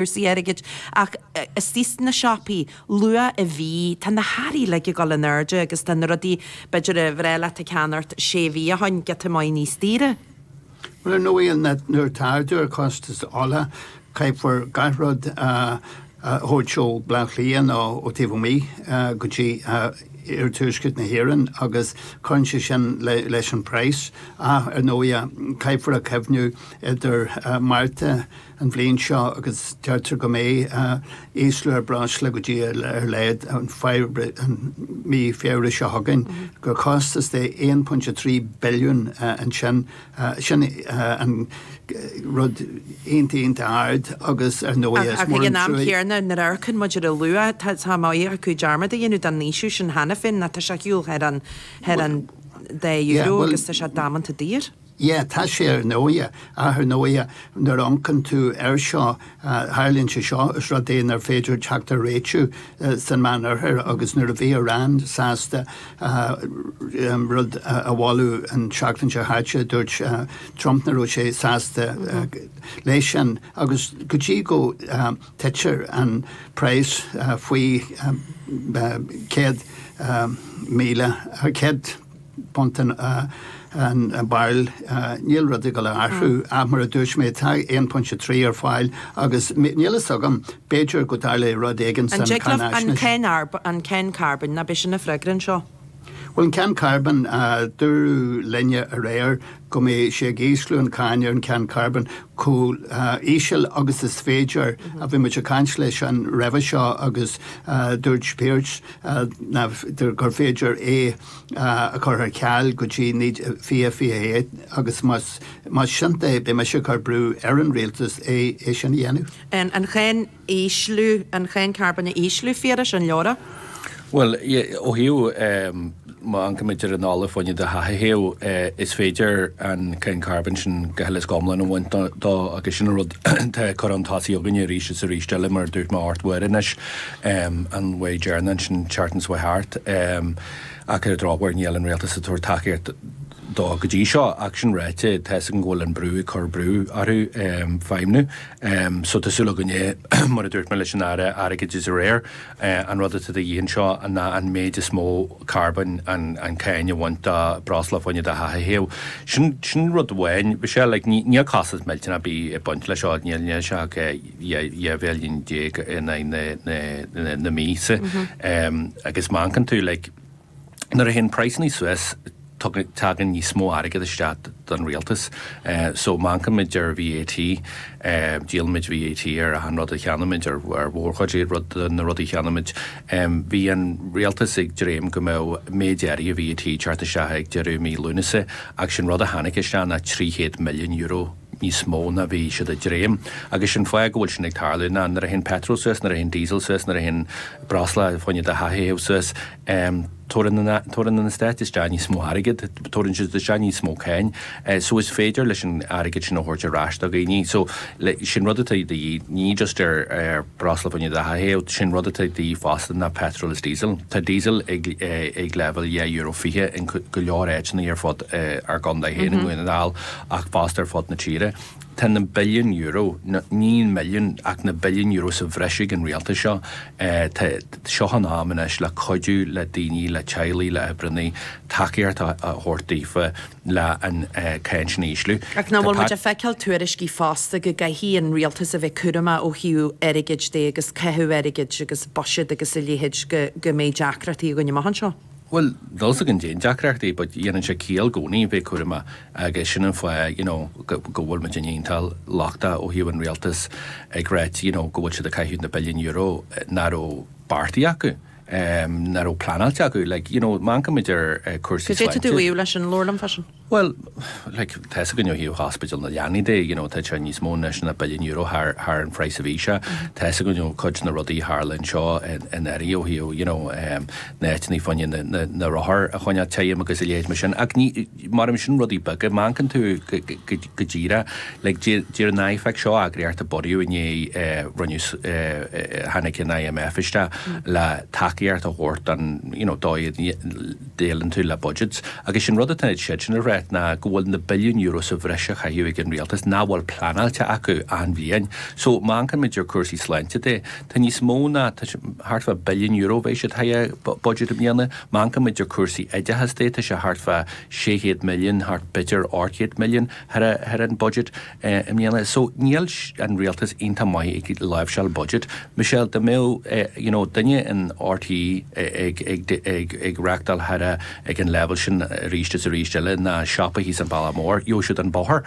cúrsaí airgid, ach istigh sna siopaí, luath i mhí, tá na hearraí uilig ag gabháil in airde agus tá na rudaí, b'fhéidir, ab fhéidir leat a cheannacht sé mhí ó shin, giota maith níos daoire. Bhuel, ar ndóigh, nuair atá ardú ar chostas ola, caithfear gach rud a thabhairt ó Bhleá Cliath nó ó taobh amuigh go dtí iarthuaisceart na hÉireann agus cuireann sé sin leis an bpraghas. Ach, ar ndóigh, caithfear a chuimhneamh idir Márta, an bhliain seo agus deirtear go mbeidh ísliú ar bhreosla go dtí ar a laghad mí Feabhra seo chugainn, gur costas de £1.3 billiún sin an rud iontach ard agus ar ndóigh is mór an truaigh. Ach ag an am céanna, nuair a amharcann muid ar an luach, tá a mbáidh acu dearmad a dhéanamh den fhaoiseamh sin cheana féin, tá sé ag gabháil thar an €2 agus tá sé damanta daor. Yeah, tá sé ar ndóigh, ach ar ndóigh nuair a amharcann tú air seo, tharlaíonn sé seo, is rud é nár féidir teacht ar réitiú san Meánoirthear agus nuair a bhí Iran sásta rud a mholadh an tseachtain seo chaite, dúirt Trump nach raibh sé sásta leis sin agus go dtí go dtitear an praghas faoi céad míle, céad. punt an bairille, níl rud ag gabháil a athrú, ach mar a dúirt mé, tá 1.3 ar fáil agus níl a fhios agam, b'fhéidir go dtarlóidh rud éigin san cáinfhaisnéis. An cháin carbóin, an b'é sin an freagra anseo? Bhuel, an cháin carbóin, dúradh linne aréir go mbeidh sé ag ísliú an cháin ar an cháin carbóin chomh híseal agus is féidir, a bhí muid ag caint leisean roimhe seo agus dúirt Pearse gur féidir é, a chur ar ceal go dtí 2021 agus más indéanta é beidh mise ag cur brú ar an rialtas é sin a dhéanamh. An cháin a ísliú, an cháin carbóin a ísliú, a Phiarais, an leor é? Bhuel, ó thaobh, má amharcann muid ar an ola fá choinne do theach a théamh, is féidir an cháin carbóin sin go huile is go hiomlán a bhaint dó agus sin an rud atá curtha chun tosaigh againne arís is arís eile mar a dúirt mé ocht uair anois. an way Gerna ansin Charton's way thart ach ar dhrochuair níl an rialtas ag tabhairt tacaíocht dó go dtí seo ach sin ráite tá fhios agam go bhfuil an brú ag cur brú orthu feidhmniú so tá súil againne mar a dúirt mé leis an Aire Airgeadais aréir an rud atá de dhíth anseo ná an méid is mó carbóin an an cáin a bhaint de bhreosla fá choinne do theach a théamh sin sin rud amháin Michelle like níl costas millteanach bídh ag baint leis seo níl níl sé ach dhá mhilliún déag in aghaidh na míosa agus má amharcann tú, like, nuair a théann praghsanna suas, tugann, tagann níos mó airgead isteach don rialtas. So má amharcaimid ar VAT, díolaimid VAT ar achan rud a cheannaímid, ar mhórchuid de rud, de na rudaí a cheannaímid. Bhí an rialtas ag dréim go mbeadh méid áirithe VAT ag teacht isteach ag deireadh mhí Lúnasa ach is é an rud a tháinig isteach ná trí chéad milliún euro. níos mó ná bhí siad ag dréim, agus is é an fáth go bhfuil sin ag tarlú ná nuair a théann peitreal suas, nuair a théann diesel suas, nuair a théann breosla fá choinne do theach a théamh suas, tabharann an stát isteach níos mó airgead, tabharann siad isteach níos mó cáin, so is féidir leis an airgead sin a thabhairt ar ais do dhaoine. So sin rud atá de dhíth, ní just ar breosla fá choinne do theach a théamh, sin rud atá de dhíth fosta ná peitreal is diesel. Tá diesel ag leibhéal dhá euro fiche in go leor áiteanna ar fud ár gcontae féin i nDún na nGall. ach fosta ar fud na tíre. Tá na billiúin euro, ní na milliúin ach na billiúin euro sa bhreis ag an rialtas seo. Tá, seo an am anois le cuidiú le daoine, le teaghlaigh, le hoibreannaí, tacaíocht a thabhairt daofa le an cáinteanna a ísliú. Ach nach bhfuil muid ag feiceáil tuairiscí fosta go gcaithfidh an rialtas a bheith cúramach ó thaobh airgid de agus caitheamh airgid agus buiséad agus a leithéid go mbeidh deacrachtaí againn amach anseo. Bhuel, níl 'fhios agam fá dtaobh den deacrachtaí but dhéanann sé ciall i gcónaí, bheith cúramach agus sin an fáth you know go bhfuil muid iontach lochtach ó thaobh an rialtas ag rá you know go bhfuil siad ag caitheamh na billiúin euro nach raibh beartaithe acu, nach raibh pleanáilte acu like you know má amharcaimid ar cúrsaí sláinte. Is é to do leis an leabharlann freisin. Bhuel, like, tá 'fhios againn ó thaobh Ospidéal na Leanaí de, you know, tá sé níos mó ná na billiúin euro thar, thar an phraghas a bhí sé. Tá 'fhios againn ó chuid de na rudaí a tharla anseo in, in Éirinn ó thaobh, you know, ehm, na áiteannaí fá choinne na, na, na rothair a choinneáil tirim agus a leithéid mar sin. Ach ní, mar a deirim sin rudaí beaga, má amharcann tú go, go, go díreah, like, deir, deir an IFAC seo eagraíocht a bunaíodh i ndiaidh, eh, rinneadh, eh, eh, tháinig an IMF isteach le tacaíocht a thabhairt don, you know, dóigh, Déileálann tú le budgets, agus is é an rud atá siadsan ag ráit, ná go bhfuil na billiúin euro sa bhreis á chaitheamh ag an rialtas nach bhfuil pleanáilte acu achan bhliain. So, má amharcaimid ar cúrsaí sláinte de, tá níos mó ná, tá sé, thart fá billiún euro, beidh siad thar budget i mbliana. Má amharcaimid ar cúrsaí oideachas de, tá sé thart fá sé chéad milliún, thart, b'fhéidir, ocht gcéad milliún, thar, thar an budget. i mbliana so níl an rialtas iontach maith ag láimhseáil budget Michelle dá mbeadh you know duine in RTÉ ag reachtáil thar ag an leibhéal sin arís is arís eile ná siopa thíos an Bhealach Mór gheobhadh siad an bóthar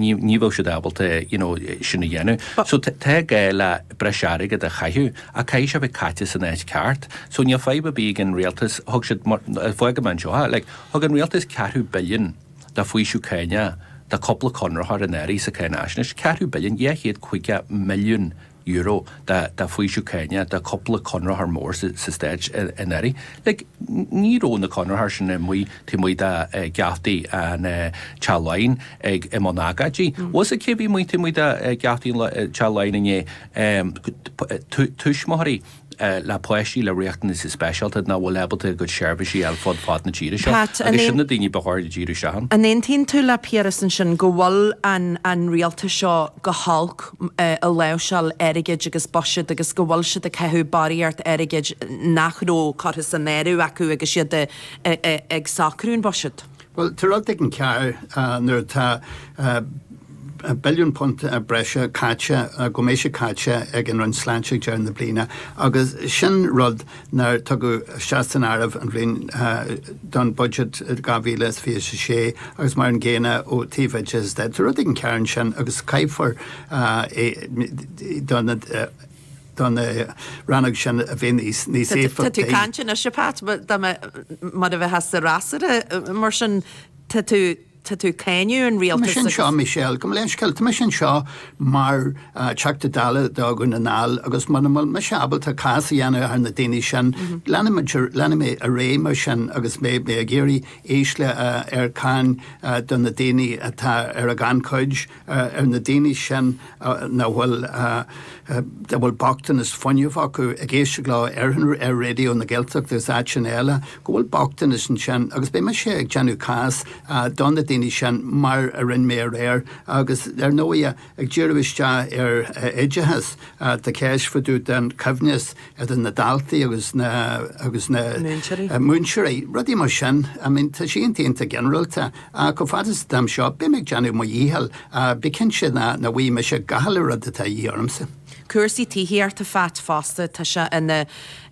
ní bheadh siad ábalta you know sin a dhéanamh so tá gá le breis airgead a chaitheamh ach caithfidh sé bheith caite san áit cheart so níl fadhb ar bith ag an rialtas thug siad mar fágadh mé anseo ha like thug an rialtas ceathrú billiún de faoiseamh cánach do cúpla conraitheoir anuraidh sa Cháinaisnéis, ceathrú billiún, dhá chéad caoga milliún Euro de de faoiseamh cánach do cúpla conraitheoir mór sa Stát anuraidh. Like, ní raibh na conraitheoirí sin amuigh taobh amuigh de geaftaí Teach Laighean ag i mbun agóide. Agus cé a bhí amuigh taobh amuigh de geaftaí Teach Laighean inné? Tuismitheoirí. le páistí le riachtanaisí speisialta nach bhfuil ábalta a gcuid seirbhísí a fháil fud fad na tíre seo Pat, agus sin na daoine ba chóir dúinn díriú isteach an. An aontaíonn tú le Piaras ansin go bhfuil an an rialtas seo go holc i láimhseáil airgid agus buiséad agus go bhfuil siad ag caitheamh barraíocht airgid nach raibh curtha san áireamh acu agus iad ag socrú an bhuiséad? Bhuel, tá rud éigin cearr nuair atá billiún punt breise caite, go mbeidh caite, ag an Roinn Sláinte ag deireadh na bliana agus sin rud nár tugadh isteach san áireamh an bhliain don budget 2026 agus mar an gcéanna ó taobh oideachais de. Tá rud éigin cearr ansin agus caithfear é do na. don rannóg sin a bheith níos éifeachtaí. Tá tú ag caint anois, a Phat, mar a bheifeá sa fhreasúra. Mar sin, tá tú ag cáineadh an rialtais. Tá mise anseo, Michelle, gabh mo leithscéal, tá mise anseo mar Teachta Dála do Dhún na nGall agus mura bhfuil mise ábalta cás a dhéanamh thar na daoine sin, leanfaidh mé ar aghaidh mar sin agus mé ag iarraidh ísliú ar cáin do na daoine atá ar an ghannchuid. ar na daoine sin a bhfuil a bhfuil bochtanas fuinnimh acu ag éisteacht leo ar ar Raidió na Gaeltachta agus áiteanna eile, go bhfuil bochtanas ansin agus beidh mise ag déanamh cás do na daoine sin mar a rinne mé aréir agus ar ndóighe ag díriú isteach ar oideachas, tá ceist fá dtaobh den choibhneas idir na daltaí agus na agus na múinteoirí, rudaí mar sin. I mean tá sé iontach iontach ginearálta. Ach chomh fada is atá mé anseo, beidh mé ag déanamh mo dhícheall, ach bí cinnte nach bhfaighidh mise gach uile rud atá a dhíth ormsa. Cúrsaí tithíochta a Phat fosta, tá sé ina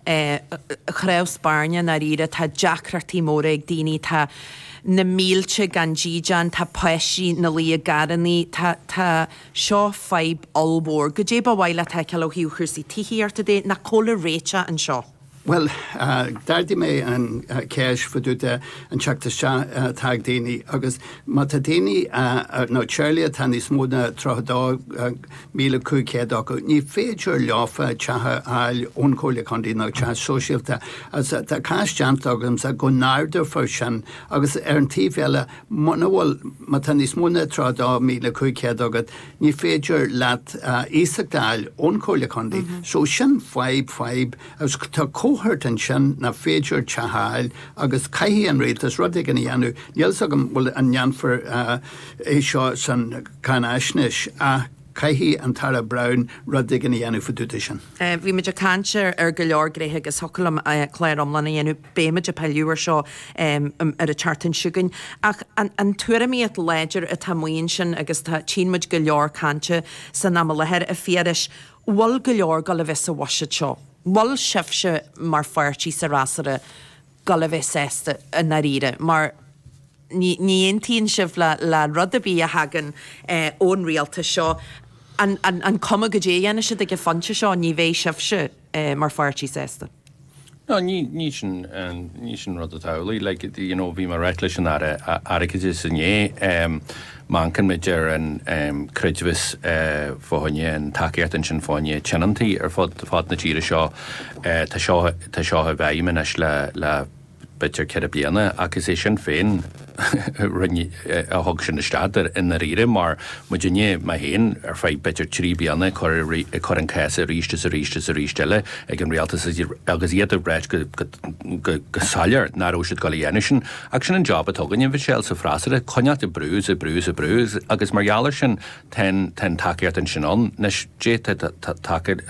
chnámh spairne i ndáiríre. Tá deacrachtaí móra ag daoine, tá na mílte gan dídeán, tá páistí ina luí i gcarrannaí, tá, tá, seo fadhb ollmhór. Goidé ba mhaith leat a fheiceáil ó thaobh chúrsaí tithíochta de? Nó cá bhfuil an réiteach anseo? Bhuel, d'ardaigh mé an cheist fá dtaobh den teacht isteach atá ag daoine agus má tá daoine nó teaghlaigh atá níos mó ná 32,500 acu, ní féidir leofa teach a fháil ón Chomhairle Contae nó teach sóisialta. Agus tá cás déanta agamsa go n-ardófar sin agus ar an taobh eile, muna bhfuil, má tá níos mó ná 32,500 agat, ní féidir leat iasacht a fháil ón Chomhairle Contae. So sin fadhb, fadhb, agus tá cohort ansin nach féidir teach a fháil agus caithfidh an rialtas rud éigin a dhéanamh. Níl a fhios agam bhfuil, an ndéanfar é seo sa cháinaisnéis ach caithfidh an tAire Browne rud éigin a dhéanamh fá dtaobh de sin. Bhí muid ag caint ar go leor rudaí agus thiocfadh liom clár iomlán a dhéanamh. beimid ag pilleadh ar seo ar an tseachtain seo chugainn, ach an tuairimíocht láidir atá amuigh ansin, agus tá, tchíonn muid go leor cainte san am i láthair, a Phiarais, bhfuil go leor dul a bheith sa bhuiséad seo? Bhfuil sibhse mar pháirtí sa fhreasúra dul a bheith sásta i ndáiríre, mar, Ní aontaíonn sibh le rud ar bith a thagann ón rialtas seo. An cuma goidé a dhéanfaidh siad ag an phointe seo, ní bheidh sibhse mar pháirtí sásta. No, ní sin, ní sin an rud atá amhlaidh. Like, you know, bhí mé ag ráit leis an Aire Airgeadais inné. mar shampla maidir leis an creidmheas fá choinne an tacaíocht ansin fá choinne tionontaí ar fud na tíre seo. Tá seo, tá seo i bhfeidhm anois le, le, b'fhéidir ceithre bliana, ach is é Sinn Féin a thug sin isteach i ndáiríre, mar muidne, mé féin, ar feadh b'fhéidir trí bliana ag cur, ag cur an cás arís is arís is arís eile ag an rialtas agus iad ag ráit go soiléir nach raibh siad ag dul a dhéanamh sin. Ach sin an jab atá againne, a Mhichelle, sa bhfreasúra, coinneáilt ag brú is ag brú is ag brú agus mar gheall air sin tá an tacaíocht ansin ann. Anois, d'fhéadfadh tacaíocht.